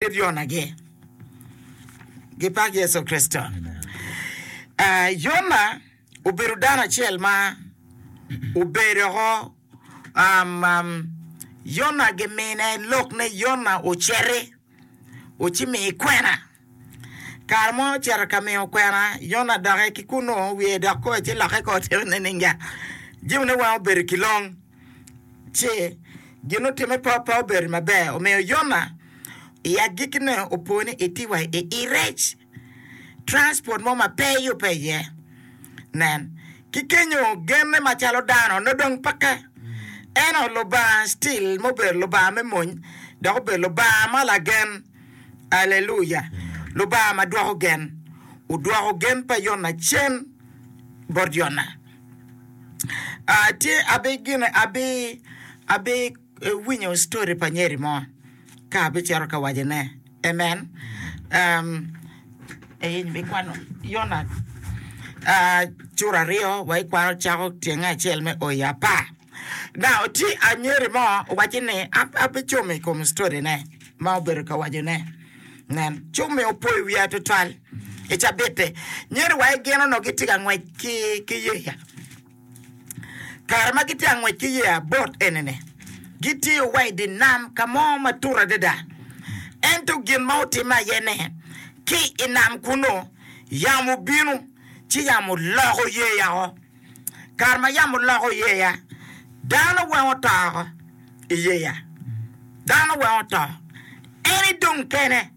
Kit Yonagi. Gipak Yecu Kricito. Yona obedo dano acel ma obedo woko. Yona gimine lok ni Yona ociti oci mi kwena. Kare mo ocito ka miyo kwena, Yona dokke ki kunnu wiye dok koyo ci lokke kor tye nininga. Jimine weng obedo ki long. ci gin otime pe obedo maber omiyo Yona i agikine opo ni etye wa i irec transport mo ma pe yubbe iye. Nen, ki kenyo genne macalo dano nongo dong peke. Eno Lubanga still ma obedo Lubanga me mony dok obedo Lubanga ma lagen. Aleluya! Lubanga ma dwoko gen. Odwoko gen pa Yona cen bot Yona. aa tye abi gin abi abi winyo story pa nyeri mo ka abicito ka wacone amen um eeh in ibikwano Yona aa cura aryo wa ikwano cako tyenge acel me o i apar. Dok ci anyeri mo owacci ni, An pe cumo i kom story-ne ma obedo ka wacone. Nen, cummi opoyo wiya twatwal. I cabit-ti, nyeri wa i gin onongo gitye ka ngwec ki yeya. Kare ma gitye ka ngwec ki yeya, bot eni-ni, gitiyo wa i dye nam ka mo ma tut adada. Ento gin ma otimme aye ni, ki i nam kunnu, yamo obino, ci yamo oloko yeya o. kare ma yamo loko yeya, dano weng oto oko i yeya, dano weng oto, en idong kene.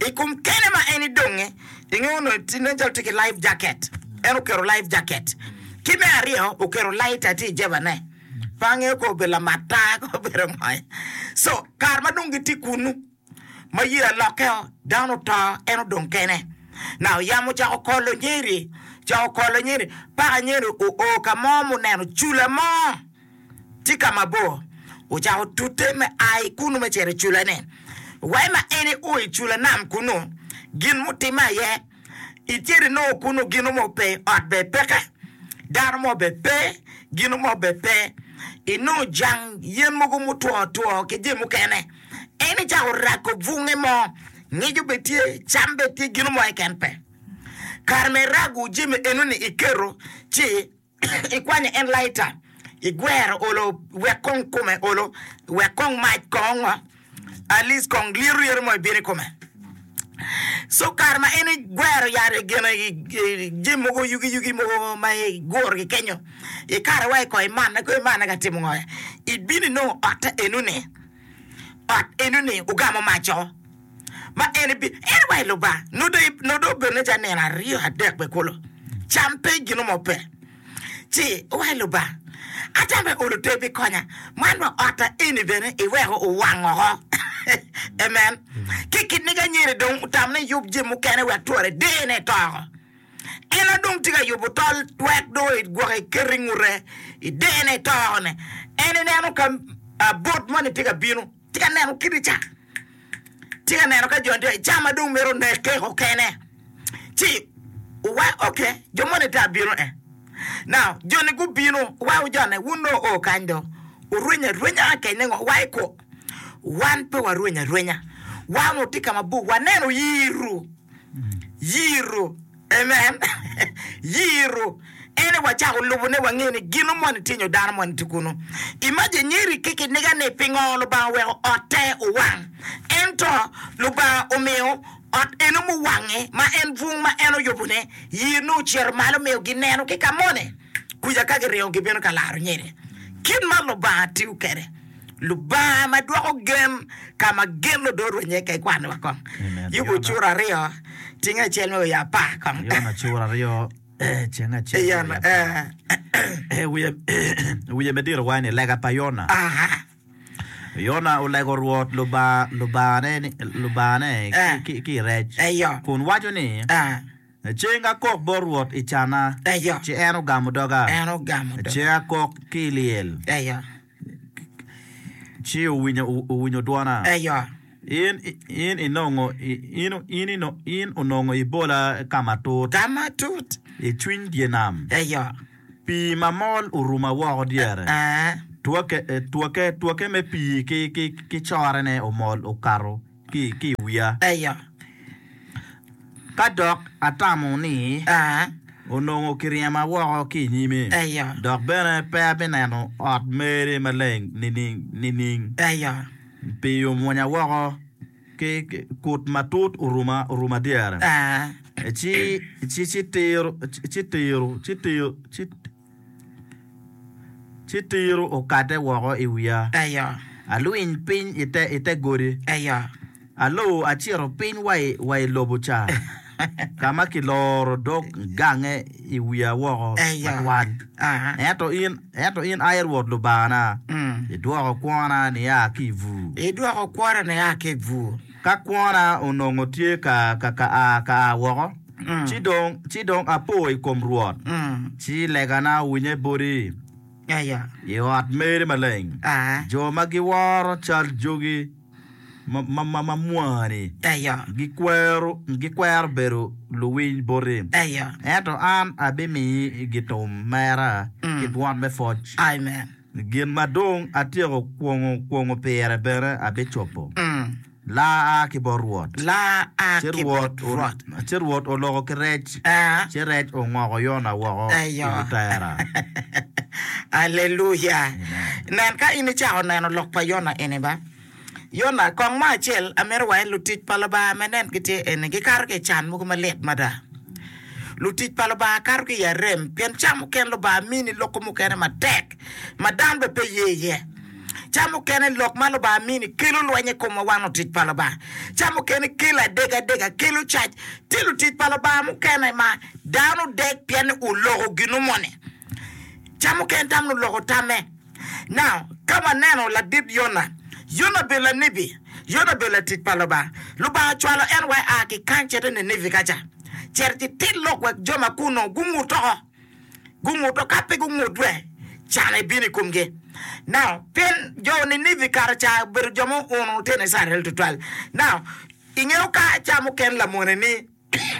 I kom kene ma en idonge, inge onongo ti nen calo ti ki life jacket, en oketo life jacket. Ki me aryo, oketo laita ti i jebane, pe angeyo ka obedo lamat taa ka obedo ngo. So, kare ma dong giti kunu, Ma yeya lokke o, dano oto, en odong kene. Naka yamo ocako kolo nyeri, ocako kolo nyeri, paka nyeri oo ka mo ma oneno cula mo tye ka mabor. Ocako tute me a ki kunu me cito i culane. Wa ma en eo i cula nam kunu, gin mutimme aye, icito inongo kunu gino mo pe, ot bene peke, dano mo bene pe, gino mo bene pe. Inongo jang yen mogo mutwo otwo ki jami mukene. En ni cako rago bunge mo, ngico bene tye, cam bene tye, gino mo keken pe. Kare ma irago jami eno ni iketo ci ikwanyo en laita, igwero olo wek kong kume olo, wek kong mac kong at least kong lyeto lyeto mo ibino ikome. So kare ma en igwero yat i gin i jami mogo yugi yugi mogo ma igurogi kenyo, ikare wa i koi manna kong imanna ka timo ngo? Ibino inongo otta eno ni. ot enoni ogamo maco, ma en ebi, en wa i loba, nongo dong, nongo dong obedo nen calo nino aryo adek bene kulu, cam pe, gin mo pe, ci oa i loba, atamo bene olo te bikonya, man wa otta eni bene iweko owang oko. Amen. Ki kit-ni ka anyira-ni dong otamo ni eyub jami mukene wek twere dene to oko. En a dong tye ka yubo tol twek dong egwoke eketo ingute idene itokone en ineno ka bot moni tye ka bino tye ka neno kit ica tye ka neno ka joni tye ica ma dong mito neke kekene ci wa ok jo moni tye abino e now joni gubino wa ojone wun dong oo kany dong orwenyo arwenya kekene ngo wa iko Wan pe warweny arwenya. Wan onongo tye ka mabor, waneno yiro, yiro. Amen! Yiro. Ene wacako lubone, wangeyo ni gino moni tye nyo dano moni tye kunu. Imagine nyeri ki kiniga ni pingo Lubanga oweko otte owang. Ento Lubanga omiyo ot eno muwange, ma en bwung ma en oyubone, yiro ne ocito malo omiyo gineno ki ka moni. Kuca ka giringo gibino ka laro nyeri. Kit ma Lubanga tiyo kwede. Lubanga ma dwoko gen ka ma gen ludor wa iye kek wan wa kong. Yubo ocuro aryo cing acel me wiye apar kong. Yon acur aryo ceng acel me Ayan, wiye apar. eh, Eh, wiye wiye me diro waci ni lega pa Yona. aha, Yona olego Rwot Lubanga Lubangane ni Lubangane ki, Eh. ki, ki i rec eyo, kun waco ni ah, ceng akok bot Rwot i canna eyo, ci en ogamo doga, en ogamo do, ceng akok ki i lyel. eyo. Ci owinyo dwona. In onongo ibola ka matut. I cwiny dye nam. Pii mamol oruma woko dyere. Twoke me pii ki correne omol okato. ki i wiya. Eyo, ka dok atamo ni. Aa. Onongo kiryema woko ki i nyime. Eyo. Dok bene pe abineno ot meri maleng nining? Eyo. Pii omwonya woko, ki kut matut oruma dyere. Aa. Ci, ci, ci tiro, ci tiro, ci tiro, ci. Ci tiro okate woko i wiya. Aya. Alwiny piny i te godi. Aya. Alor acito piny wa i lobo ca, ka ma kiloro dog gange i wiya woko matwal. Ento in, ento in ai Rwot Lubangana, idwoko kwona nia ki i bur. Idwoko kwona nia ki i bur. Ka kwona onongo tye ka a woko. ci dong ci dong apo i kom Rwot, ci legana owinye boti i ot meri maleng. Jo ma giworo cal jogi ma mwani gikwero bedo luwiny boti, ento an abimiyi gitum mera ki dwon me pwoc. Gin ma dong atyeko kwongo kwongo pire bene abicobo. Laa aa ki bot Rwot, ci Rwot oloko ki rec, ci rec ongoko Yona woko i wi tera. Aleluya! Nen ka in icako neno lok pa Yona eni ba. Yona, kong mo acel amito waye lutic pa Lubanga me nen ki tye eni, gikato ki i can mogo malit mada. Lutic pa Lubanga kato ki i arem pien ca mukene Lubanga mini loko mukene matek ma dano bene pe ye iye. Ca mukene lok ma Lubanga mini kelo lweny i komwa wan lutic pa Lubanga. Ca mukene kelo adega adega, kelo cac. Tye lutic pa Lubanga mukene ma dano dek pien ni oloko gino moni. Ca mukene tamo ni oloko tamme. Nao ka waneno ladit Yona, Yona obedo lanibi, Yona obedo latic pa Lubanga. Lubanga ocwalo en wa ea ki kany cito i Ninivi ka ca, cito ci tit lok wek jo ma kunnu gungut oko. Gunguto, ka pe gungut dwe, can ebino i komgi. Nao pien jo Ninivi kato ca obedo jo ma ouno tyen Icrael tutwal. Nao ingeyo ka ca mukene lamone ni.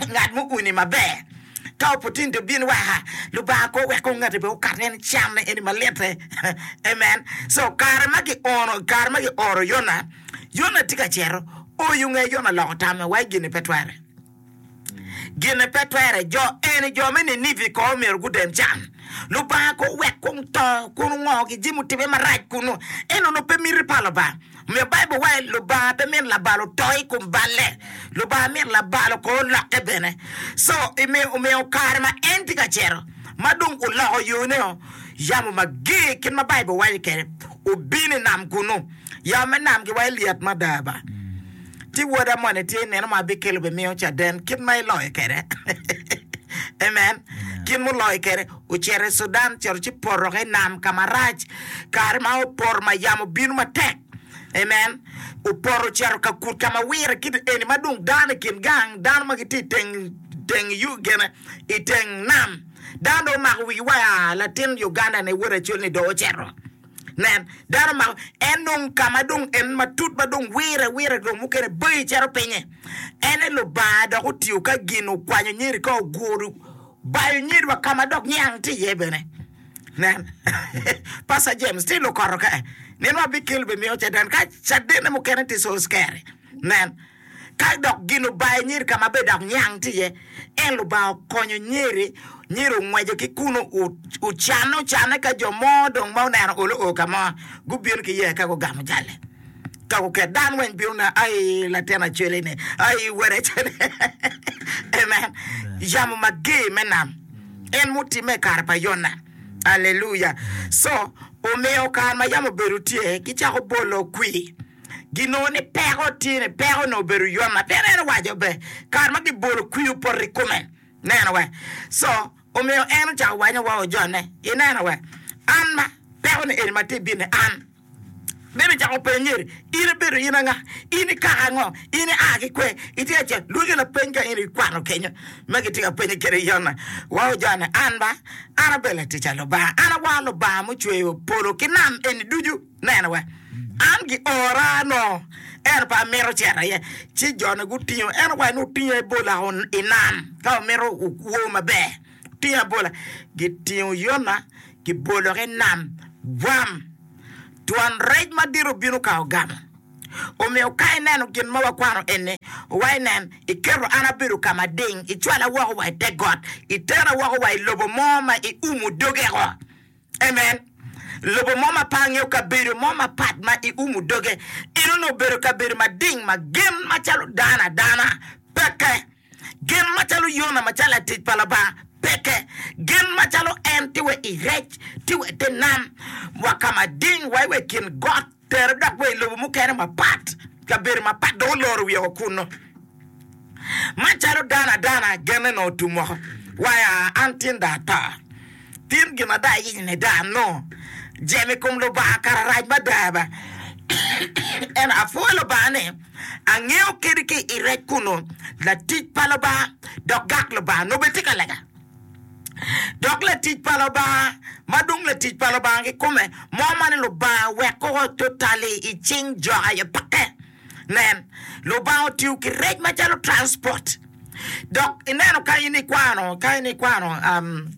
Ngat mo uni maber. Ka opportunity obin weka Lubanga kor wek kong ngati bene okat ni en cam ne eni malitte amen so kare ma giono kare ma gioro Yona Yona tye ka cito oyo nge Yona oloko tamme wa gine pe twere gine pe twere jo eni jo me Ninivi kor myero gudem can Lubanga kor wek kong to kun ongo ki jemo tibe marac kunu eno no pe miti pa Lubanga Omiyo Baibul waco, Lubanga pe mito labal oto i kom balle. Lubanga mito labal okor lokke bene. Co omiyo omiyo kare ma en tye ka cito ma dong oloko yone, yamo mager kit ma Baibul waco kwede obino i nam kunnu. Yamo me nam giwaco lyet mada ba. Ci woda moni tye ineno ma abikelo obimiyo caden kit ma iloyo kwede. Amen. Kit muloyo kwede. ocito i Cudan cito ci poto ki i nam ka marac, kare ma opoto ma yamo obino matek, amen, opoto ocito ka kut ka ma wire kit eni ma dong dano i kin gang, dano ma gitye i teng teng yu gene i teng nam, dano dong omako wigi wa ya, latin Uganda ni wod acol ni dong ocito, nen, dano omako, en dong ka ma dong en matut ma dong wire wire dong mukene bayi cito pinye, ene Lubanga dok otiyo ka gin okwanyo nyeri ka oguru. Bayo nyedwa ka ma dok niang tye iye bene. Nen, Pastor James, tye lukoto ka nino abicel bi miyo caden ka cadene mukene tye Saul's Kerry. Nen, ka dok gin obayo nyer ka ma be dok niang tye iye, en Lubanga okonyo nyeri, nyer ongwejo ki kun ocanne ocanne ka jo mo dong ma oneno olo oo ka mo gubino ki yee ka gugamo jalle. Ka guket, dano weng bino neno, ai, latin Acwele-ni, ai, wod Acwele-ni. Amen. Yamo mager me nam en mutimme i kare pa Yona. Aleluya! Co omiyo kare ma yamo obedo tye, gicako bolo kwir. Ginongo ni peko tye ni, peko onongo obedo Yona. Pien en owaco be, kare ma gibolo kwir opoto i kome. Neno wa. Co Omiyo en ocako wanyo wa o Jonne, ineno wa, an ma, peko ni eni ma tye bini, an. Ben ocako penyeri, In ibedo in anga? In ikako ango? In ia ki kwe? Itye ka cito? Lwoki lapeny ka in ikwano kenyo ma gitye ka penye kede Yona. Wa o Jonne, an ba, an abedo latic a Lubanga, an awar Lubanga mucweyo polo ki nam eni ducu. Nena wa, an giora nongo, ento pe amito cito aye. Ci jone gutingo en wa ni otingo ebola o i nam, ka omito okwo maber. Otingo ebola, gitingo Yona, gibolo ki i nam, bwam! Twon rec madit obino ka ogamo. Omiyo ka ineno gin ma wakwano eni, wa inen, Iketo an abedo ka mading, icwala woko wa i te got, itera woko wa i lobo mo ma iumo doge woko. Amen. Lobo mo ma pe angeo, kabedo mo mapat ma i umu doge in onongo obedo kabedo mading ma gen macalo dano adana peke, gen macalo Yona macalo latic pa Lubanga peke, gen macalo en tye wa i rec, tye wa i te nam, wa ka mading, wa i wa i kin got. Tere dok wa i lobo mukene mapat, kabedo mapat, dong oloro wiye woko kunnu. Macalo dano adana genne nongo otum woko, waya an tin dong ato. Tin gin ada ayenyo ni dong anongo jemo i kom Lubanga kare arac mada ba. Ento apwoyo Lubanga ni angeyo kadi ki i rec kunnu latic pa Lubanga dok gak Lubanga nongo bene tye ka lega. Dok latic pa Lubanga, ma dong latic pa Lubanga kikome, mo ma ni Lubanga wek koko tutali i cing jo aye peke. Nen, Lubanga otiyo ki rec macalo transport. Dok ineno ka in ikwano, ka in ikwano, um,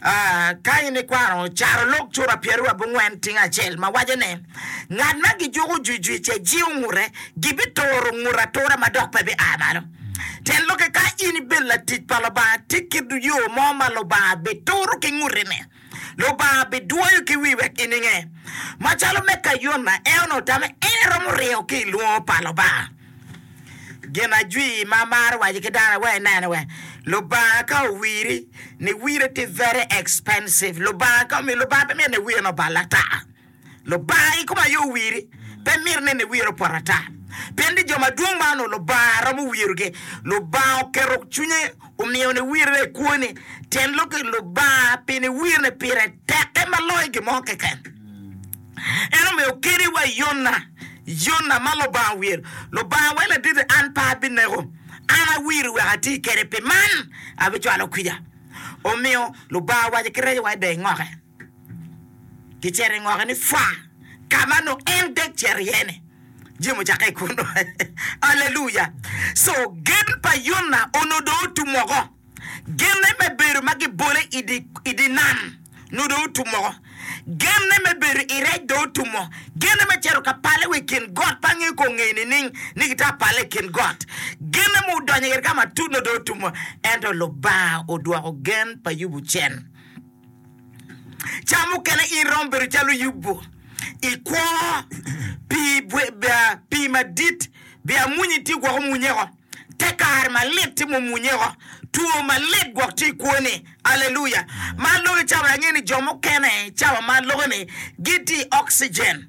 ah, ka in ikwano carolok cura pyeraryo abongwen tingo acel ma waco ni, ngat ma gijuko jwijwic-ce jiwo ngute, gibituro ngute atura ma dok pe bia malo. Tyen lokke, Ka in ibedo latic pa Lubanga, ti ki yo mo ma Lubanga bituro ki ngutine. Lubanga bidwoyo ki wi wek ininge. Macalo me ka Yona, en onongo otame, en eromo ringo ki i lwongo pa Lubanga. Gin ajwi ma amaro waco ki dano aye inene wek Lubanga ka owiri, niwire tye very expensive. Lubanga ka omiyo, Lubanga pe myero niwire ni obal ata. Lubanga i kom aye owiri, pe mito nene wiro opoto ata. Pien ni jo madwong ma onongo Lubanga romo wirogi, Lubanga oketo cwinye omiyo niwirre i kwoni. Tyen lok ni, Lubanga pi niwirre pire tekke ma loyo gin mo keken. En omiyo keni wa Yona, Yona ma Lubanga owiro. Lubanga weko laditi an pe abineko, an awiri wek ati kede, pi man abicwalo kwija. Omiyo, Lubanga owaco ki reco wa i dye ngoke. Gicito i ngoke ni pwa, ka ma nongo en dek cito iye-ni. Jami ocakke i kunu. Aleluya! Co gen pa Yona onongo dong otum woko. Genne me bedo ma gibole i dye nam onongo dong otum woko. Genne me bedo i rec dong otum woko. Genne me cito ka pale wa i kin got, pe angeyo kong ngeye nining ni gitwero pale i kin got. Genne me donyo ka matut onongo dong otum woko. Ento Lubanga odwoko gen pa Yubu cen. Ca mukene in romo bedo calo Yubu i kwo pi madit, pi amwunyi tye gwok omwunye oko, te kare malit tye ma omwunye oko, two malit gwok tye i kwoni. Aleluya! Man lok i cawa, angeyo ni jo mukene i cawa man loko ni gitye i oxygen.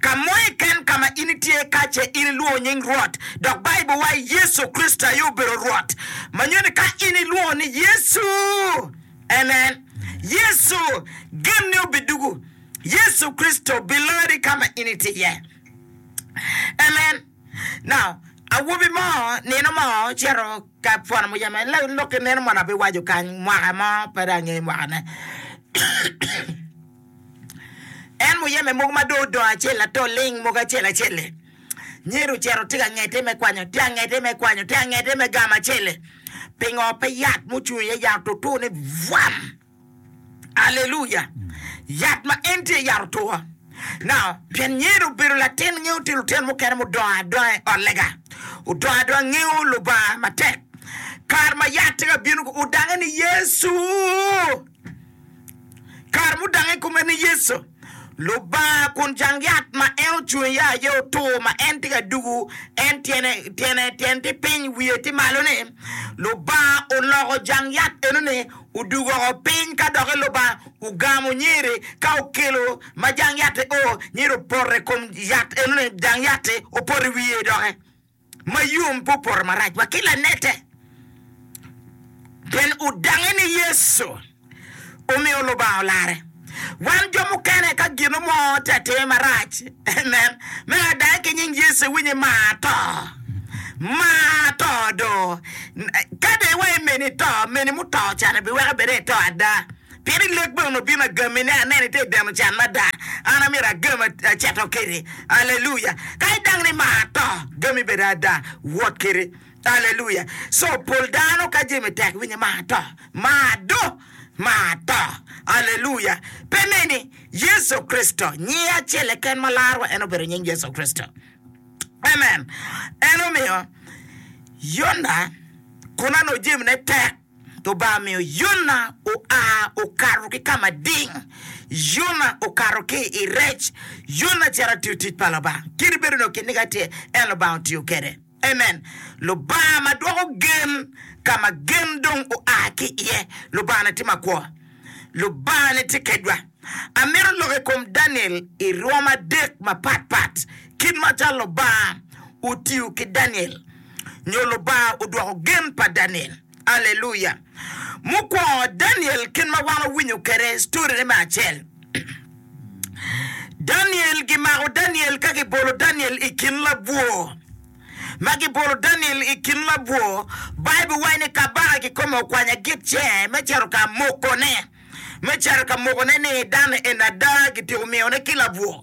Ka mo keken ka ma in itye iye ka ce in ilwongo nying Rwot, dok Baibul waco ni Yecu Kricito aye obedo Rwot, ma nyuto ni ka in ilwongo ni Yecu, amen, Yecu genne obidugu. Yecu Kricito bilori ka ma in itye iye. Amen. Now, awobi mo nino mo ocito ka pwono muyeme, en lok ki neno mono abiwaco kany mwaka mo, pe dong angeyo mwakane. En muyeme mogo ma dong odongo acel ato ling mogo acel acel-li. Nyer ocito tye ka ngete me kwanyo, tye ka ngete me kwanyo, tye ka ngete me gamo acel-li. Pingo pe yat mucung iye yat otutu ni bwam! Aleluya! Yat ma en tye yat otutu. Now, pien Nyer obedo latin, ngeyo tye lutino mukene mudongo adonga i ot lega, odongo adonga ngeyo Lubanga matek. Kare ma yat tye ka bino-gu, odange ni Yecu! Kare mudak i kome ni Yecu, Lubanga kun jang yat ma en ocung iye aye otur ma en tye ka dugu, en tyene, tyene, tyene tye piny, wiye tye malo ni, Lubanga oloko jang yat enoni odugo woko piny ka doki Lubanga ogamo nyeri ka okelo ma jang yat-ti o, nyeri opoto i kom yat enoni, jang yat-ti opoto i wiye doki. ma yom pe opoto marac wa ki lanete, pien odange ni Yecu omiyo Lubanga olarre. Wan jo mukene ka gino mo tye ka timmi marac, amen, me adange ki nying Yecu iwinyo imar to, mar to do. Ka dong iwaco meni to, meni muto can-ni biweko bed ni ito ada. Pien i lek bene onongo bino agami, ni aneni ite ideno can mada, an amyero agam aceto kedi. Aleluya! Ka idang ni mar to, gami bene ada, wot kedi. Aleluya! Co pol dano ka jemi tek winyo mar to, mar do, mar to. Aleluya! Pe neni, Yecu Kricito, nyinge acel keken ma larwa en obedo nying Yecu Kricito. Amen! En omiyo Yona kun anongo jemine tek. Lubanga omiyo Yona oa okato ki ka mading. Yona okato ki i rec. Yona cito atiyo tic pa Lubanga. Kadi bed onongo kit-ni ka tye, en Lubanga otiyo kede. Amen! Lubanga ma dwoko gen ka ma gen dong oa ki iye. Lubanga-ni tye makwo. Lubanga-ni tye kedwa. Amito lok i kom Daniel i rwom adek mapatpat, kit macalo Lubanga otiyo ki Daniel. nyo Lubanga odwoko gen pa Daniel. Aleluya! Mukwongo, Daniel kit ma wan wawinyo kwede storine me acel, Daniel gimako Daniel ka gibolo Daniel i kin labwor. Ma gibolo Daniel i kin labwor, Baibul waco ni kabaka kikome okwanya gitce me cito ka mokone, me cito ka mokone ni dano eni ada gitiko miyone ki labwor.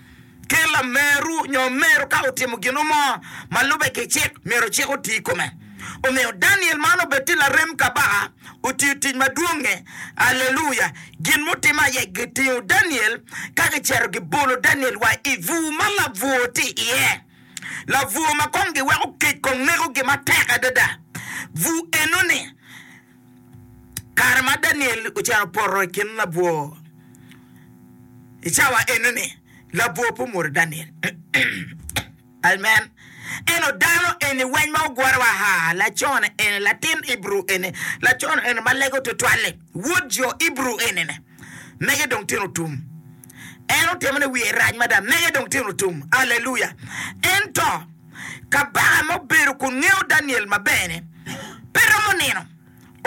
ki lameru nyo meru ka otimo gino mo ma lube ki cik, myero cik oti i kome. Omiyo, Daniel man obed tye larem kabaka, otiyo tic madwong-nge. Aleluya! Gin mutimme aye gitingo Daniel ka gicito gibolo Daniel wa i bur ma labwor tye iye, labwor ma kong giweko kec kong nekogi matek adada. Bur enoni. kare ma Daniel ocito poto i kin labwor, i cawa enoni labwor pe omwodo Daniel. Amen. Eno dano eni weng ma ogure wa ha, lacone eni, latin Ibru eni, lacone eni ma lego tutwal-li, wod jo Ibru eni-ni, mege dong tino tum. En otimo ni wiye rac mada, mege dong tino tum. Aleluya! Ento Kabaka ma obedo kun ngeyo Daniel maber-ni pe romo nino,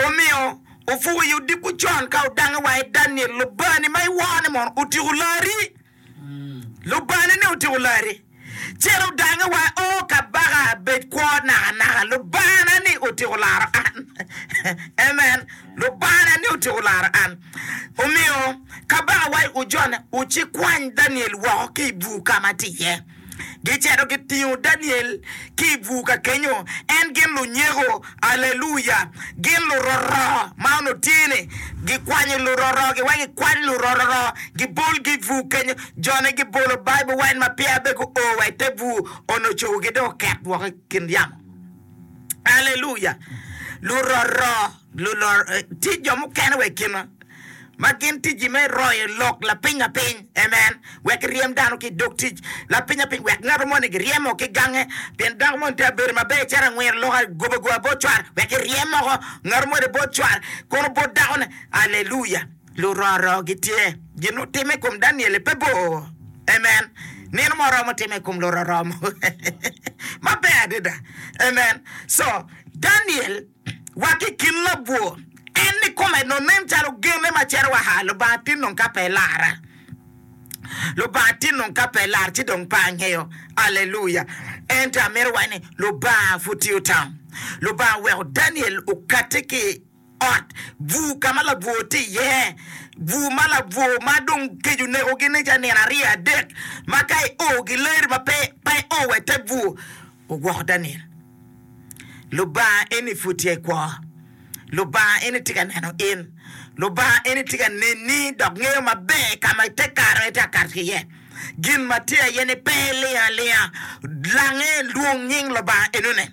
omiyo opuko i odiko con ka odange wa i Daniel, Lubangani ma iworo-ni mono otiko larri? Lubangani-ni otiko larri, cen odange wa, O kabaka, bed kwo nakanaka, Lubangana-ni otiko laro an. Amen! Lubangana-ni otiko laro an. Omiyo, kabaka wa ocik kwany Daniel woko ki i bur ka ma tye iye. Gicito gitingo Daniel ki i bur ka kenyo, en gin lunyeko, aleluya, gin luroro ma onongo tye ni gikwanyo luroro, giweko gikwany luroro, gibolgi i bur kenyo, jone gibolo Bible wine ma peya be guo wa i te bur, onongo cogogi dong oket woko i kin yamo, aleluya, luroro. Lulor tye jo mukene wa i kinwa ma gin ticgi me royo lok lapinyapiny, amen, wek giryem dano ki i dog tic lapinyapiny, wek ngat moni giryemo ki gange, pien dako moni tye abedo maber cito angwiro lok agoba goba bot cware wek eryem moko ngat moni bot cware kono bot dakone. Aleluya! Luroro gitye. Gin otimme i kom Daniel-li pe bor, amen, nino mo oromo timme i kom luroro mo maber adada, amen, co Daniel. Wa ki i kin labwor, en ni kome dong nen calo genne maciro wa haa, Lubanga tin dong ka pe lara, Lubanga tin dong ka pe lar ci dong pe angeyo, Aleluya! Ento amito wac ni Lubanga pud tye otamo, Lubanga oweko Daniel okate ki i ot bur ka ma labwor tye iye, bur ma labwor ma dong kec oneko gi ni ca nino aryo adek ma ka i o gileri ma pe i o wa i te bur, ogwoko Daniel. Lubanga eni pud tye i kwo. Lubanga eni tye ka neno in. Lubanga eni tye ka neni dok ngeyo maber ka ma ite kato aye ite ka kato ki iye. Gin ma tye aye ni pe iling alinga. Lange, lwong nying Lubanga enoni,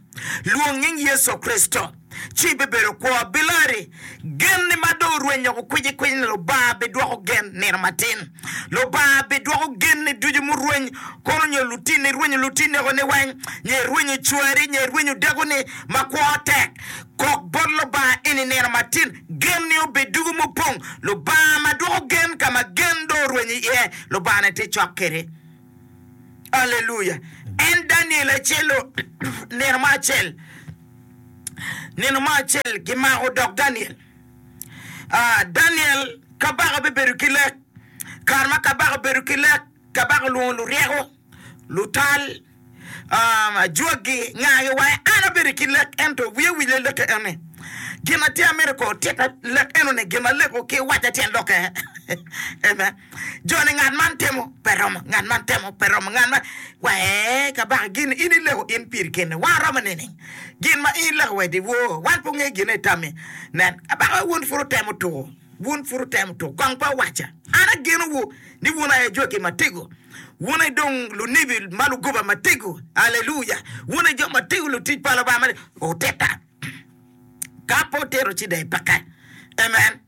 lwong nying Yecu Kricito, ci ibibedo kwo. Bilori Gen ni ma dong orwenyo woko kwicikwiny ni Lubanga bidwoko gen nino matin. Lubanga bidwoko genni ducu murweny kono nyo lutinni irwenyo lutinni oko ni weng, nyo irwenyo cwari, nyo irwenyo dakoni ma kwo tek. Kok bot Lubanga in i nino matin, genni obed ducu mupong. Lubanga ma dwoko gen ka ma gen dong orwenyo iye, Lubanga-ni tye cok kedi. Aleluya! En Daniel acel-lo, nino mo acel, nino mo acel gimako dog Daniel. Ah, Daniel, kabaka bibedo ki lek. Kare ma kabaka obedo ki lek, kabaka olwongo luryeko, lutal, ah, ajwaggi, ngagi wa, en abedo ki lek, ento wiye owile lek-ke eni. Gin ma tye amito kono tika lek enoni, gin ma lek-ku ki wacca tyen lokke. Amen. Joni ngat man temo pe romo, ngat man temo pe romo, ngat man wa ee kabaka gin in ileko in piri keni wa romo nining? Gin ma in ileko wa idi woo wan pe wangeyo gin aye itammi. Nen, kabaka wun pud wutemo tuko, wun pud wutemo tuko, kong pe wuwacca, An agenowu ni wun aye jwaki ma tego, wun aye dong lunibi ma lugoba ma tego, Aleluya! Wun aye jo ma tego, lutic pa Lubanga ma tego. Otitta! Ka pe otito ci dai peke. Amen.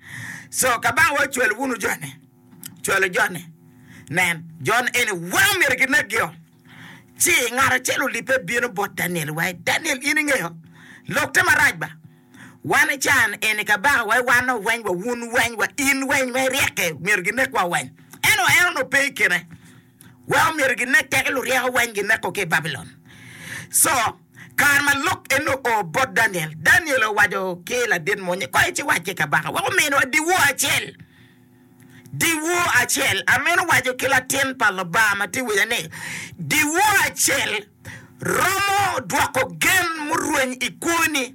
So ka bang wa cwalo wunu joni, cwalo joni, nen, jon eni wa omyero kinegio. Ci ngat acel olibbe bino bot Daniel wa, Daniel in ingeyo lok te marac ba? Wan i can eni kabaka wa iwanno weny wa, wun weny wa, in weny wa iryeke myero ginek wa weny. Ento en onongo pe ikine. wek omyero ginek teke luryeko weng gineko ki i Babilon. Co, kare ma lok eni oo bot Daniel, Daniel owaco ki ladit mony ni, Koy ci wac ki kabaka wek ominwa dyewor acel. Dyewor acel! Amino waco ki latin pa Lubanga ma tye i wiya ni, dyewor acel romo dwoko gen murweny i kwoni.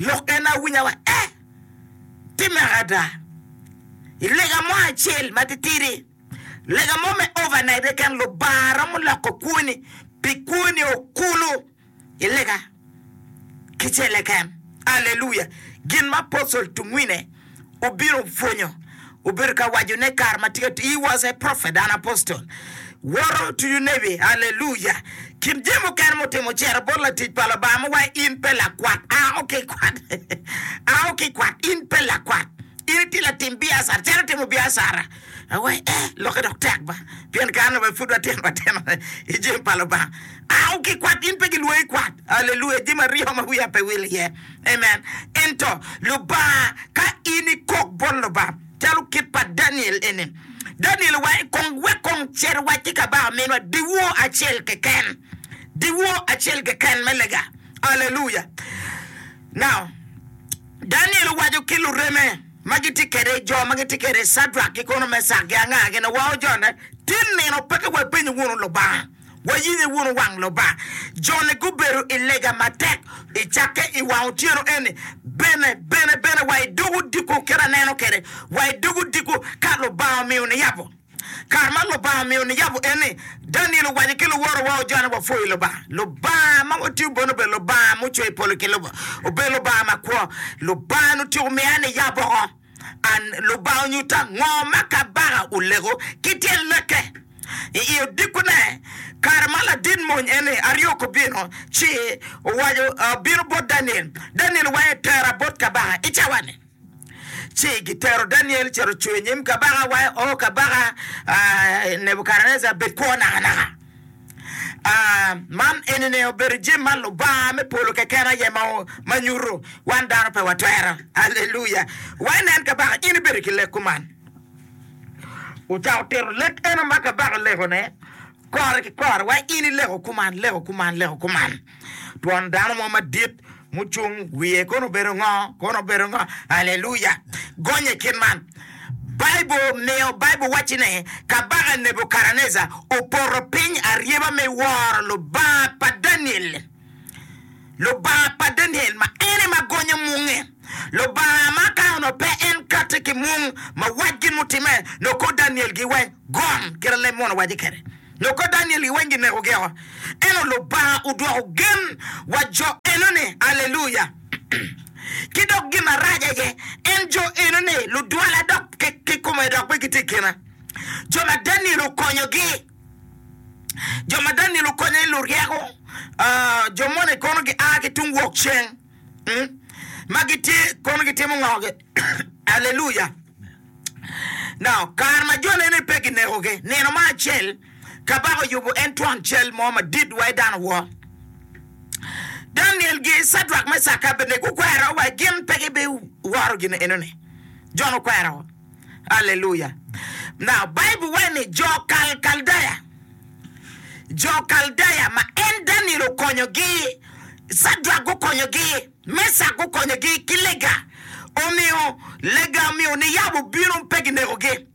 Lok en awinya wa e timme ada i lega mo acel matitidi, lega mo me overnight keken, Lubanga romo loko kwoni pi kwoni o kulu i lega kicele keken. Aleluya! Gin ma Apostle Tungwine. obino pwonyo, obedo ka waco ne kare ma tye atir, he was a prophet and apostle, woto to you navy, hallelujah, kin jami mukene mutimo ocito bot latic pa Lubanga ma wa in pe lakwat, ao ki kwat, ao ki kwat, in pe lakwat, in itye latim biacara, calo itimo biacara. Awaci, Ee, lokke dok tek ba, pien kare-ni wa pud watino matino i jami pa Lubanga. Au ki kwat, in pe gilwongi kwat. Aleluya! Jami aryo ma wiya pe wil iye. Amen! Ento, Lubanga, ka in ikok bot Lubanga, calo kit pa Daniel eni, Daniel owaco, Kong wek kong cer wac ki kabaka minwa dyewor acel keken, dyewor acel keken me lega. Aleluya! Now, Daniel owaco ki lureme. ma gitye kede i jo ma gitye kede i Cadrak ki kono Mecak gi anga gin wa ojone ti nino peke wa ipenyo wunu Lubanga wa yinge wunu wang Lubanga joni gubedo i lega matek i cakke i wang otyeno eni bene bene bene wa idog odiko kit aneno kede wa idog odiko ka Lubanga omiyo niyabo Kare ma Lubanga omiyo niyabo en ni, Daniel owaco ki luworo wa ojanyo wa pwoyo Lubanga. Lubanga ma watiyo bene obedo Lubanga ma ocweyo polo ki lobo. Obedo Lubanga ma kwo. Lubanga-ni otyeko miya niyab oko. An, Lubanga onyutta ngo ma kabaka oleko ki tyen leke. I i odikkune, kare ma ladit mony eni, Ariok, obino, ci owaco, obino bot Daniel. Daniel owaco ni, Tera bot kabaka i cawa-ni. Ci gitero Daniel ocito ocung i nyim kabaka, wa O kabaka Nebukadnejar, bed kwo nakanaka. Man enini obedo jami ma Lubanga me polo keken aye ma nyuto, wan dano pe watwero. Aleluya! Wa inen kabaka, in ibedo ki lek kuman. Ocako tito lek eno ma kabaka olekone kore ki kore, wa in ileko kuman, leko kuman, leko kuman. Twon dano mo madit Mucung wiye kono obedo ngo? Kono obedo ngo? Aleluya! Gony i kit man. Baibul miyo Baibul wacci ne, Kabaka Nebukadnejar opoto piny aryeba me woro Lubanga pa Daniel, Lubanga pa Daniel ma en aye ma gonyo munge, Lubanga ma ka onongo pe en katti ki mung ma wac gin mutimme, nongo kor Daniel-gi weng gom kit a leb munu owaco kwede. Loko Daniel i weng gineko gi oko, ento Lubanga odwoko gen wa jo enoni, Alleluia! Ki dok gin marac aye, en jo enoni ludwala dok kikome dok pe gitye i kina. Jo ma Daniel okonyo gi, jo ma Daniel okonyo ni luryeko, jo moni kono gia ki tung wok ceng. ma gitye kono gitimo ngogi. Aleluya! Now, kare ma jone ni pe kinekogi, nino mo acel, Kabaka oyubo en twon cal mo madit wa i dano wor. Daniel gi Cadrak, Mecak ki Abednego gukwero wa gin pe gibiworo gin eno ni. Jon okwero. Aleluya! Now, Baibul waco ni jo Kalkaldeya, jo Kaldeya ma en Daniel okonyogi, Cadrak gukonyogi, Mecak gukonyogi ki lega, omiyo lega omiyo niyabo obino pe ginekogi.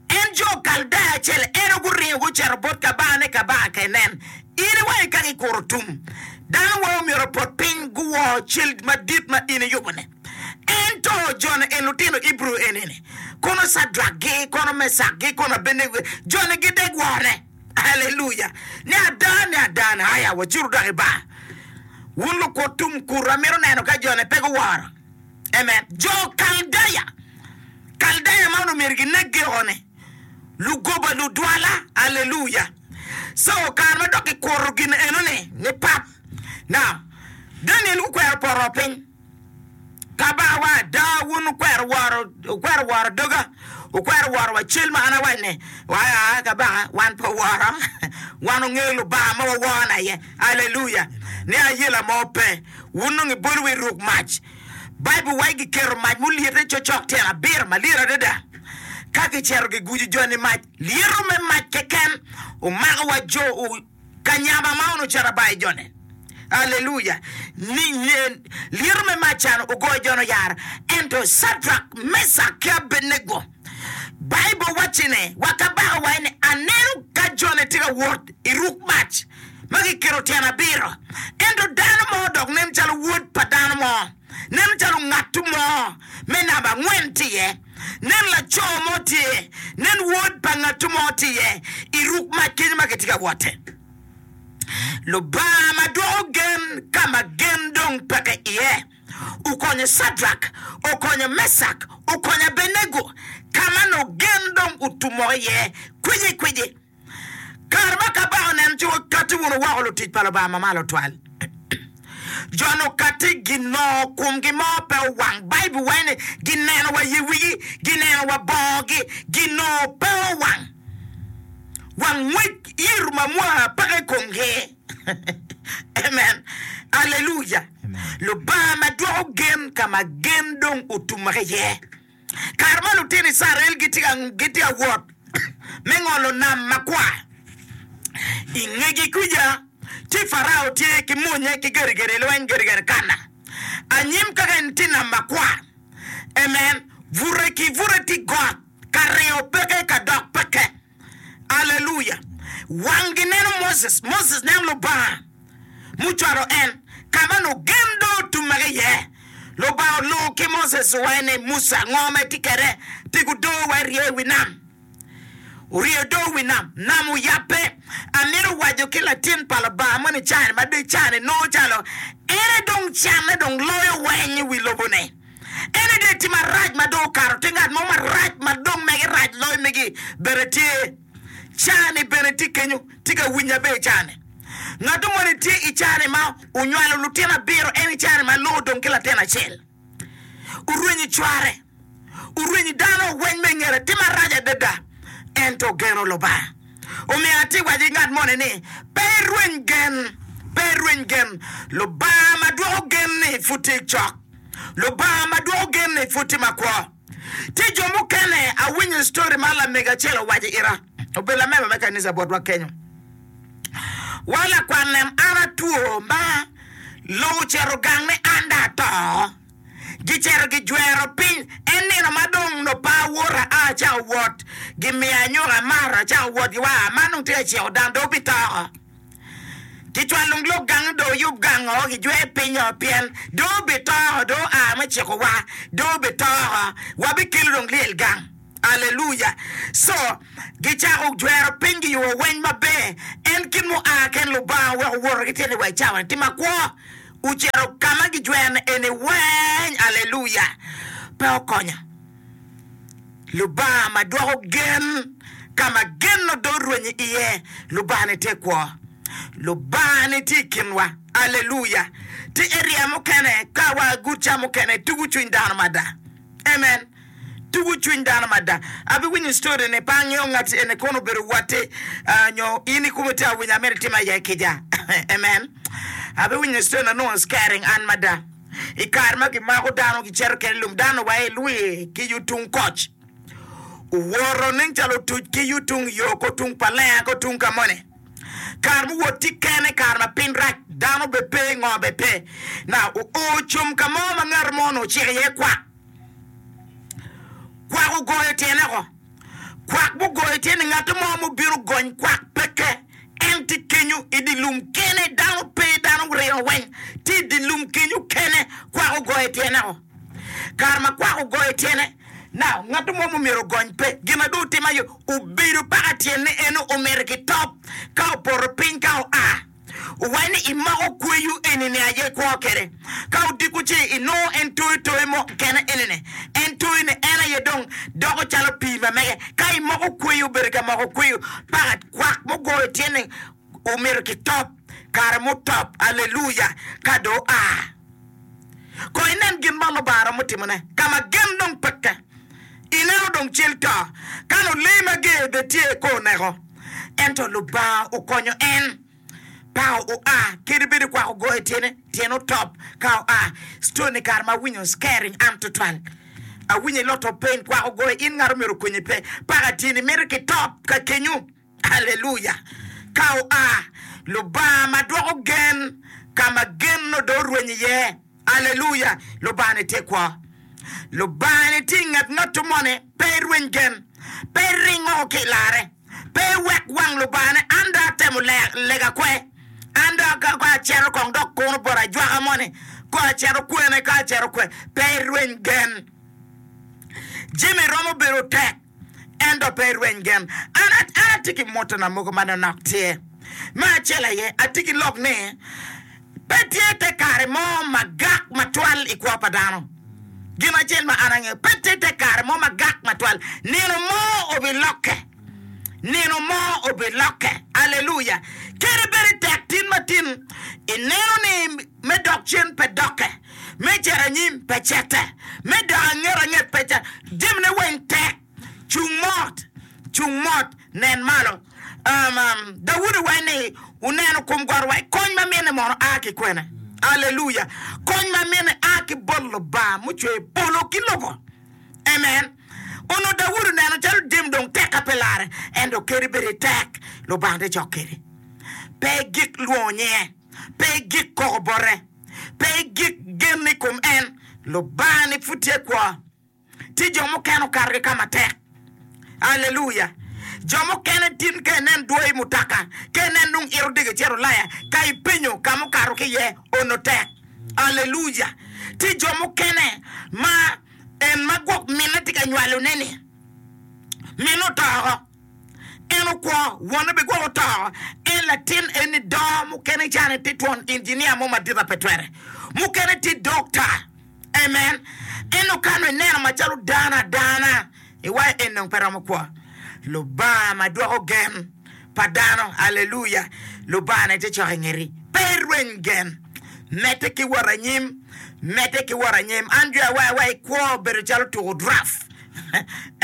En jo Kaldeya acel eno guringo gucito bot kabanga ni kabanga ka inen. In iwangi ka gikuro tum, dano wai omyero opot piny guwor cal madit ma in iyubo-ni. Ento joni en lutino Ibru enini, kono Cadrakgi, kono Mecakgi, kono Abenego, joni gidegwone. Haleluya! Ni ada, ni ada, ni aya, wacuru dok i bar. Wun lukut tum kuto, amito neno ka joni pe guworo. Amen. Jo Kaldaya, Kaldaya ma onongo myero gineggi oko-ni, lugoba, ludwala. Haleluya! So, kare ma dok kikuto gin enoni, ni pap. Now, Daniel gukwero poto piny. Ka bawa ada, wun wukwero woro, wukwero woro doga, wukwero woro wa cal ma an awaco ni, waya aa kabaka, wan pe woro, wan ongeyo Lubanga ma waworo na ye, aleluya, ni ayela mo pe, wun nongo ibolo wa iruk mac, Bible waco giketo mac mulyete cocok tyen abiro malyet adada, ka gicito gigujo joni mac, lyeto me mac keken omako wa jo, Kanyama ma onu cito bayo jone. Aleluya! Ni, nen, lyeto me mac can ogoyo jone oyara. Ento Cadrak, Mecak ki Abednego, Baibul wacci ne, wa kabaka waci ni, Aneno ka jone tye ka wot i ruk mac ma kiketo tyen abiro, ento dano mo dok nen calo wod pa dano mo. Nen calo ngatu mo me namba angwen tye iye. Nen laco mo tye iye. Nen wod pa ngatu mo tye iye i ruk mac kenyo ma kitye ka wotte. Lubanga ma dwoko gen ka ma gen dong peke iye okonyo Cadrak, okonyo Mecak, okonyo Abenego ka ma nongo gen dong otumokke iye kwicikwici. Kare ma Kabaka oneno ci wakatti wunu woko lutic pa Lubanga Mamalo Twal. Jo-ni okatti ginongo kumgi mo pe owang. Baibul waco ni, Gineno wa i wigi, gineno wa bongogi, ginongo pe owang. Wangwec ito ma mwaka peke i komgi. Amen! Aleluya! Lubanga ma dwoko gen ka ma gen dong otummere iye. Kare ma lutino Icrael gitye ka wot me ngolo Nam Makwar, i ngegi kuca ci Parao tye ki monnye ki gedigedi lweny, gedigedi kana. Anyim kaka en tye Nam Makwar, amen, bute ki bute tye got, ka ringo peke, ka dok peke. Alleluia! Wanggi neno Moses, Moses neno Lubanga mucwalo en ka ma nongo gen dong otummege iye. Lubanga olungo ki Moses owacce ni, Musa, ngo ma itye kwede? Pi gudoo wa irye i wi nam. Orye odoo i wi nam, nam oyabbe. Amito waco ki latin pa Lubanga moni i caa-ni ma dong i caa-ni nongo calo en aye dong canne dong loyo weny i wi lobo-ni. En aye dong etye marac ma dong okato tye ngat mo marac ma dong mege rac loyo megi bene tye cani bene tye kenyo tye ka winyo maber i cani ngato moni tye i cani ma onywalo lutino abiro en i cani ma loo odong ki latin acel orwenyo cware orwenyo dano weng me ngete tye marac adada ento ogeno lubanga omiyo atye waco ki ngat moni ni pe irweny gen pe irweny gen lubanga ma dwoko gen ni pud tye cok. Lubanga ma dwoko gen ni pud tye makwo. Tye jo mukene awinyo story ma lamego acel owaco ita, obedo lamemba me kanisa botwa kenyo. Wa lakwat lem an atwo ma loo ocito gang ni an dong ato. Gicito gijwero piny, en nino ma dong nobba awota a acako wot gimiya anyuka amaro acako wot giwaa ma nung tye ka ciko dang dong wubitoko. Kicwalo lung lok gang do oyub gang o gijwe piny o pien do obi to o do oa me ciko wa do obi to o wa bi kelo dong lyel gang alleluya co gicako jwero piny giyubo weny maber en kit mo a ken lubanga oweko woto ki tyene wa icawa ni tima kwo ocito kama gijwero ni eni weny alleluya pe okonyo. Lubanga ma dwoko gen, ka ma gen odong orwenyo iye, Lubanga-ni tye kwo. Lubanga-ni tye i kinwa. Aleluya! Ti eria mukene ka wa guca mukene tugo cwiny dano mada. Amen! Tugo cwiny dano mada. Abiwinyo story-ni, pe angeyo ngat eni kono obedo watti ah, nyo in ikumi ti awinyo amito itimo aye kica. Amen! Abiwinyo story-ni, anongo scaring an mada. I kare ma gimako dano gicito kene lum dano wa i lwi ki yo tung koc owoto nen calo otuc ki yo tung yo ko tung pa lenga ko tung ka moni kare mu wot tye kene kare ma piny rac dano be pe ngo be pe na oo com ka mo ma ngat mo onongo ociko iye kwak Kwak ogoyo tyene oko. Kwak mugoyo tye ni ngat mo mubino gony kwak peke. En tye kenyu i dye lum kene, dano pe, dano rino weng tye i dye lum kenyu kene. Kwak ogoyo tyene oko. Kare ma kwak ogoyo tyene, now ngat mo mumyero ogony pe. Gin ma dong otim aye obedo paka tyene eno omeri ki top ka opoto piny ka oa. Wene i mako kweyo enini aye kwo kede? Ka odiko ce i nongo en toyo toyo mo kekene enene, en toyo ne en aye dong doko calo pii ma mege. Ka i moko kweyo obedo ka moko kweyo pakat kwak mo goyo tyen ni omito ki top kare mo top aleluya ka do oa. Ko inen gin ma Lubanga romo timone ka ma gen dong peke. Ineno dong cal to, ka lulee mager bene tye i kor neko, ento Lubanga okonyo en. Pao oa, kadi bed okwako goyo tyene, tyene otop ka oa. Story ni kare ma awinyo scaring an tutwal. Awinyo i lot ope in kwako goyo, in ngat omyero okonyi pe, paka tyeni mito ki top ka kenyu. Haleluya! Ka oa, Lubanga ma dwoko gen, ka ma gen nongo dong orwenyo iye. Haleluya! Lubanga-ni tye kwo. Lubanga-ni tye i nget ngatto moni. Pe irweny gen. Pe iring woko ki i larre. Pe iwek wang Lubanga ni, An dong atemo lega kwe. An dong ka acito kong dok kuno bot ajwaka moni, kong acito kwene ka acito kwe. Pe irweny gen. Jami romo bedo tek, ento pe irweny gen. An, an atye ki motona mogo ma nonok tye. Me acel aye, atye ki lok ni pe tye te kare mo magak matwal i kwo pa dano. Gin acel ma an angeyo, pe tye te kare mo magak matwal. Nino mo obilokke. Nino mo obilokke. Aleluya! Kadi bed itek tin ma tin, ineno ni Me dok cen pe dokke, me cito anyim pe cete, me dok anget anget pe cete, jemine weng tek. Cung mot, cung mot, nen malo. Daudi waco ni, Wuneno kom got wa. Kony ma mine mono a ki kwene? Aleluya! Kony ma mine a ki bot Lubanga mucweyo polo ki lobo. Amen! Onongo Daudi oneno calo jami dong tek ka pe larre, ento kadi bed itek, Lubanga tye cok kedi. Pe igik lwongo nyinge. Pe igik koko bote. Pe igik genni i kom en. Lubanga-ni pud tye kwo. Tye jo mukene okato ki ka matek. Aleluya! Jo mukene tin ka inen dwoyo i mutoka, ka inen dong ito dege cito Ulaya, ka ipenyo ka mukato ki iye, onongo tek. Aleluya! Tye jo mukene ma en ma gwok minne tye ka nywalone-ni, minne oto woko. En okwo, wone bene gwok oto. En latin en ni do, mukene ca ni tye twon injinia mo madit ape twere, mukene tye dokta. Amen. Ento ka nongo ineno macalo dano adana, iwaco en dong pe romo kwo. Lubanga ma dwoko gen pa dano, aleluya, Lubanga ne tye cok i ngeti. Pe irweny gen. Medde ki wot anyim, medde ki wot anyim. An jwi awayawa ikwo bedo calo tuko draft.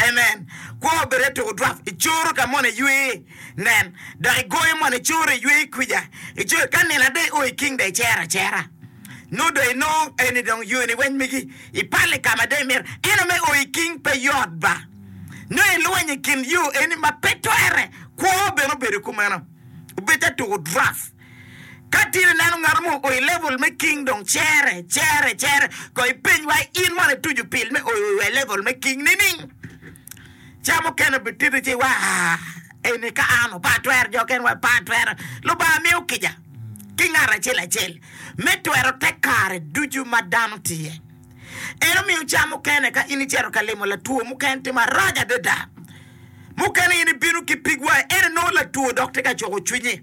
Amen! Kwo obed eto odwak i coro ka moni iywe nen dok i goyo moni i coro iywe i kwica i coro ka nino ada i o i king da i cero acera nongo do inongo eni dong yoni weny megi i palo i kama ada i mito eno me o i king pe yot ba nongo i lweny i kin yo eni ma pe twere kwo bene obedo kumeno obed eto odwak. Ka tin ineno ngat mo ooi level me king dong cere cere cere kong ipeny wa in mono itucu pil me ooi wa i level me king nining? Ca mukene obititi ci iwaco aa eni ka an opa atwero jo okene wape atwero. Lubanga miyo kica ki ngat acel acel me twero te kare ducu ma dano tye. En omiyo ca mukene ka in icito ka limo latwo muken tye marac adada mukene in ibino ki pig wa ene nongo latwo dok tye ka cuko cwinyi.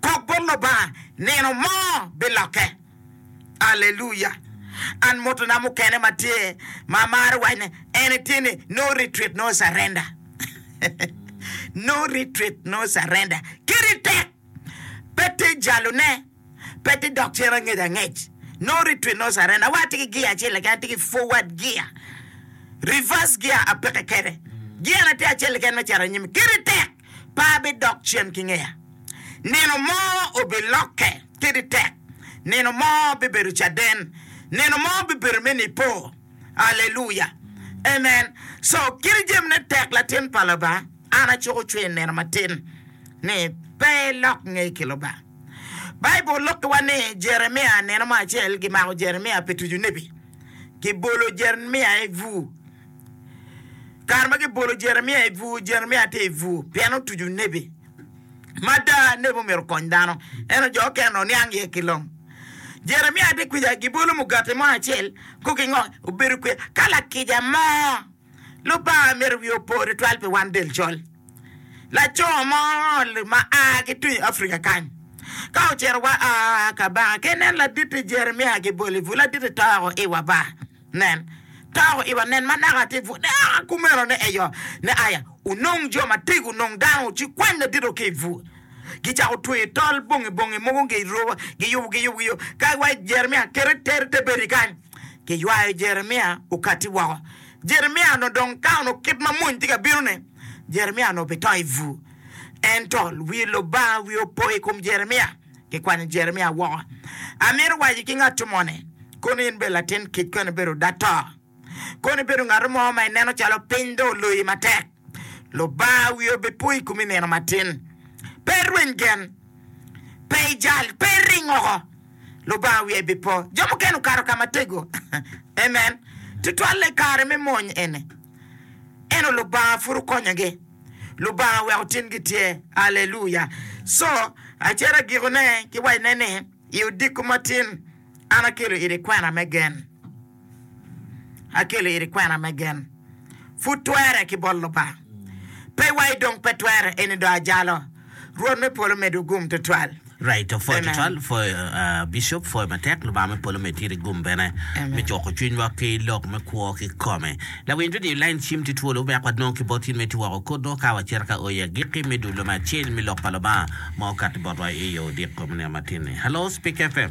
kok bot Lubanga nino mo bilokke. Aleluya! An motona mukene ma tye ma amarö wacne ene tye ni no retreat, no surrender. no retreat, no surrender. Kiri tek, pe ti jalone, pe ti dok cen angec angec. No retreat, no surrender. Wa atye ki gia acel keken, atye ki forward gia. Reverse gia apeke kede. Gia na tye acel keken me cito anyim. Kiri tek. pe abidok cen ki ngeya. Nino mo obilokke kadi tek, nino mo bibedo caden, nino mo bibedo me Nipo. Aleluya! Amen! So, kadi jamine tek, latin pa Lubanga, an acuko cwer nino matin ni pe ilok ngei ki Lubanga. Baibul lukkiwa ni Jeremia nino mo acel gimako Jeremia pi tuco nebi, kibolo Jeremia i bur. Kare ma gibolo Jeremia i bur, Jeremia tye i bur pien otuco nebi ma ada. Nebi omyero okony dano, ento jo okene oniang iye ki long. Jeremia tye kwija, gibolo mugati mo acel, kok ki ngo, obedo kwija. Ka lakica mo, Lubanga myero wiye opo tutwal pi wan del col. Laco mo ma a ki tung i Africa kany, ka ocito wa a Kabanga, ka ineno laditi Jeremia kibolo i bur, laditi to woko iwa ba. Nen, tako iwa, nen ma naka atir pud eka kumeno ne eyo ne aya, onong jo ma tego, onong dano ci kwany ladito ki i bur. Gicako tweyo tol bongi bongi mogo gi i roba, giyubo giyubo giyo, ka wa Jeremia kite teri te bedi kany. Giywayo Jeremia okati woko. Jeremia onongo dong ka onongo kit ma mony tye ka bino ni, Jeremia onongo bito i bur. Ento wi Lubanga wiye opo i kom Jeremia. Kikwanyo Jeremia woko. Amito waco ki ngat moni, Kono in bedo latin kic, kono ibedo oda to. Kono ibedo ngat mo ma ineno calo piny dong oloyi matek. Lubanga wiye obipwo i komi nino matin. Pe irweny gen. Pe ijal. Pe iring oko. Lubanga wiye bipwo. Jo mukene okato ka matego. Amen. Tutwalle i kare me mony eni. Ento Lubanga pud okonyogi. Lubanga oweko tingi tye. Aleluya! Co acata gikone giwacone ni, I odiko matin, an akelo iri kwena me gen. Akelo iri kwena me gen. Pud twere ki bot Lubanga. Pe iwaci dong pe twere, eni dong ajalo. Rwot me polo medwu gum tutwal. Right opwoyo tutwal pwoyo bishop pwoyo matek lubanga me polo med tiri gum bene me cuko cwiny wa ki lok me kwo ki kome lawiny to diyo lain cim ti twolo wek wa nong ki bot in me ti woko kod nongo ka wa cito ka oya giki me dulo me acel me lok pa lubanga ma okato bot wa i yo diko me niang matin ni hello speak fm.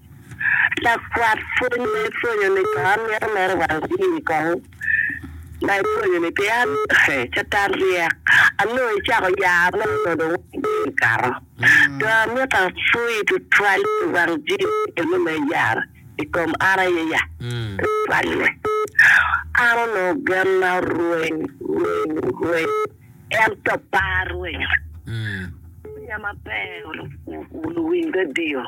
Lakwat pwony ma ipwonyo-ni kong mito mere wang ii kong ma ipwonyo-ni pien Catan ryek. Anongo icako yaa ma onongo dong wang jami okato. Dong amito apwoyi tutwal pi wang jami meno ma iyaro i kom an aye ya tutwal-le. An onongo genna rweny rweny rweny. Ento par rwenyo pwonya maber olubo luwiny redio.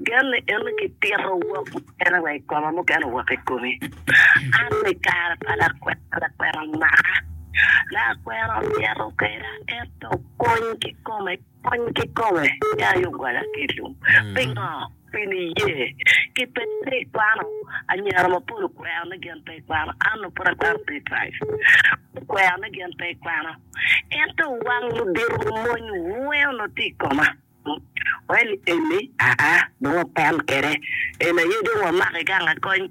Gen ni en ni kitito wok mukene wa i koma, mukene wok i komi. An i kare pa lakwena, lakwena omaka, lakwena onyeto kweda ento kony kikome. Kony ki kome me aye ogwala kico. Pingo? Pi niye ki pe pe ikwano anyira mapol okwero ni gin pe ikwano ann o pud akwano pe Christ okwero ni gin pe ikwano ento wang ludito lumony wee onongo tye ikoma wee ni eni aa dong open kede en aye dong wamaki gang akony.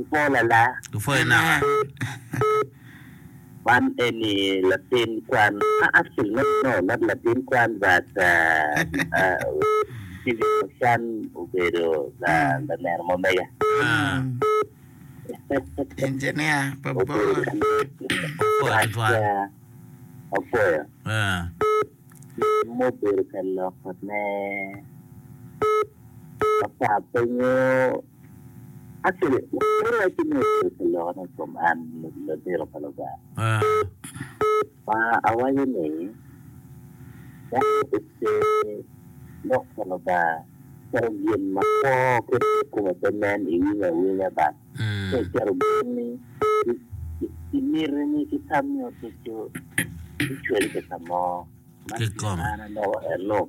Ipwo lala. Ipwo inaka. Man eni latin kwan ma actually not no not latin kwan but Steven Ochan obedo laneno ma mega. Engineer pa bor. Apoyo. Mubedo ka loko ne. Apa penyo. Actually, kadi wacci ni obedo ka lokone i kom an labito pa Lubanga, ma awaco ni dano oce lok pa Lubanga calo gin ma kwo ki dok kome pe nen i winyo awinya bang, ci acito gonni ki mitini ki tammi ducu bicwele ki ka mo ma gin ma an aloko en lok.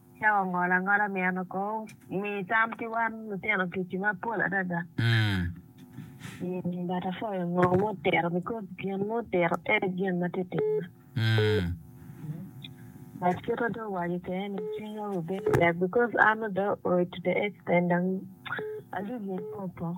Cawa ongolo angola meno ko mi tam ki wan lutino tic i mapol adada. But apwoyo ngo mutito because gin mutito e gin ma tye timma. But kit ma dong owaco kwede ni cwinya wi bedo tek because an adwa oc to the extent dong alubo opoko.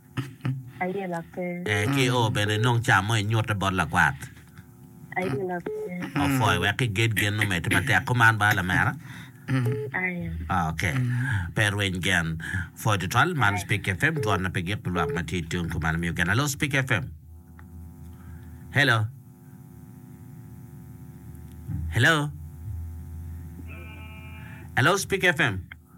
Ayela pe. Ee ki oo bene inong ca mo inyute bot lakwath. Ayela pe. Opwoyo wek iged gen omedde matek. Kuman ba lamera. Aya. Ok. Pe rweny gen. Pwoyo tutwal. Man Speak FM, dwon na pe gik pi lwak ma tye tung kuman imiyo gen. Hello Speak FM. Hello. Hello. Hello Speak FM.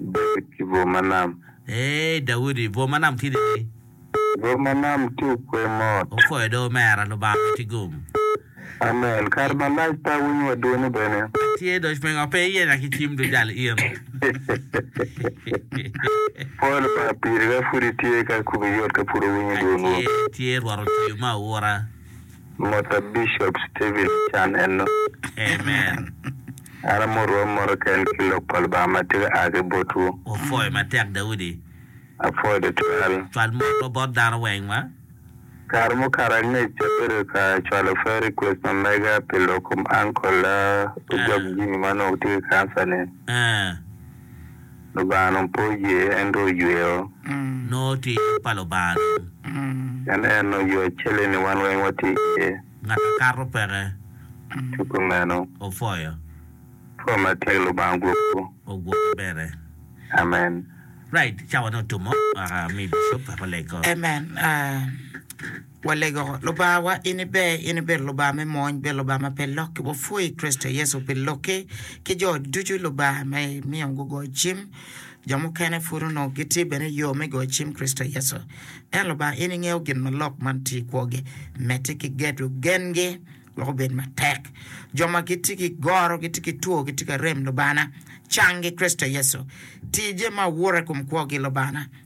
Daudi ki bwo ma nam. Eei, Daudi, bwo ma nam tidi ni. Bwo ma nam tye okwe mot. Okwe do omera, Lubanga pe tye gum. Amen, kare malac pe awinyo wa dwoni bene. Atye doc mengo pe iyenya ki cim dujal in. Pwoo Lubanga piri ka pud itye ka kubi yot ka pud owinyo dwonwu. Atye, tye Rwot otiyo me aura. Mota Bishop Steven Ochan enok. Amen. An amorwa mot keken ki lok pa Lubanga ma tye ka a ki botwu. Wapwoyo matek Daudi. Apwoyo tutwal. Cwal motwa bot dano weng ma. Kare mukato angec abedo ka cwalo prayer request ma mega pi lok kom uncle a Ojok Jimmy ma onongo tye ki cancer ni. Eh. Lubanga dong pe oye, en dong oyweyo. Nongo tye yub pa Lubanga dong. Pien en dong oyweyo acel-li-ni, wan weng watye iye. Ngat akato peke. Ci kumeno. Opwoyo. Pwony matek Lubanga ogwokwu. Ogwoki bene. Amen. Right, cawa ne otumo. Amiyi Bishop, weko lego. Amen. Walego, Lubangawa, in iber, in ibedo Lubanga me mony, ibedo Lubanga ma pe lokki. Wapwoyi i Kricito Yecu pi Lokki ki jo ducu Lubanga ma imiyo gugoyo cim. Jo mukene pud onongo gitye bene i yo me goyo cim i Kricito Yecu. Ento Lubanga, in ingeyo gin ma lok man tye i kwogi. Medde ki gedo gengi wek obed matek. Jo ma gitye ki goro, gitye ki two, gitye ka rem, Lubangana, canggi i Kricito Yecu. Ti jami ma aura i kom kwogi, Lubangana.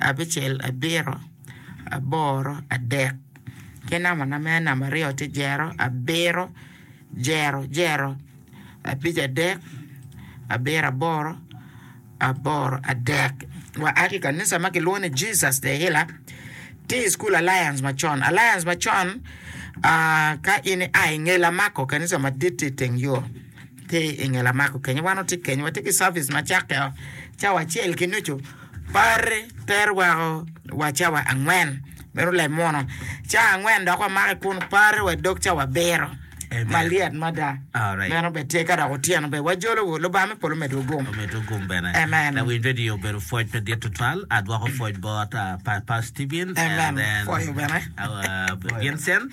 abicel, abiro, aboro, adek, ki namana me namba aryo tye jero, abiro, jero, jero, abic, adek, abiro, aboro, aboro, adek. Wa a ki i kanica ma kilwongo ni Jesus the Healer, tye i Cukul Alliance macon. Alliance macon, ah, ka in ia i nge Lamako, kanica madit tye i teng yo. Ki i nge lamako kenyo, wan watye kenyo, watye ki cavic ma cakke o cawa acel ki nucu, party tero weko wa cawa angwen, meno leb muno. Cawa angwen dok wamake kun party wa dog cawa abiro. Amen. Malyet mada. Alright. Meno bene tye ka dok otyeno bene wajolowu. Lubanga me polo medwu gum. Omedo gum bene. Amen. Lawiny radio obedo pwoc pe dit tutwal. Adwoko pwoc bot uh, pa, Pastor Steven Amen. and then Pwoyo bene. our Vincent.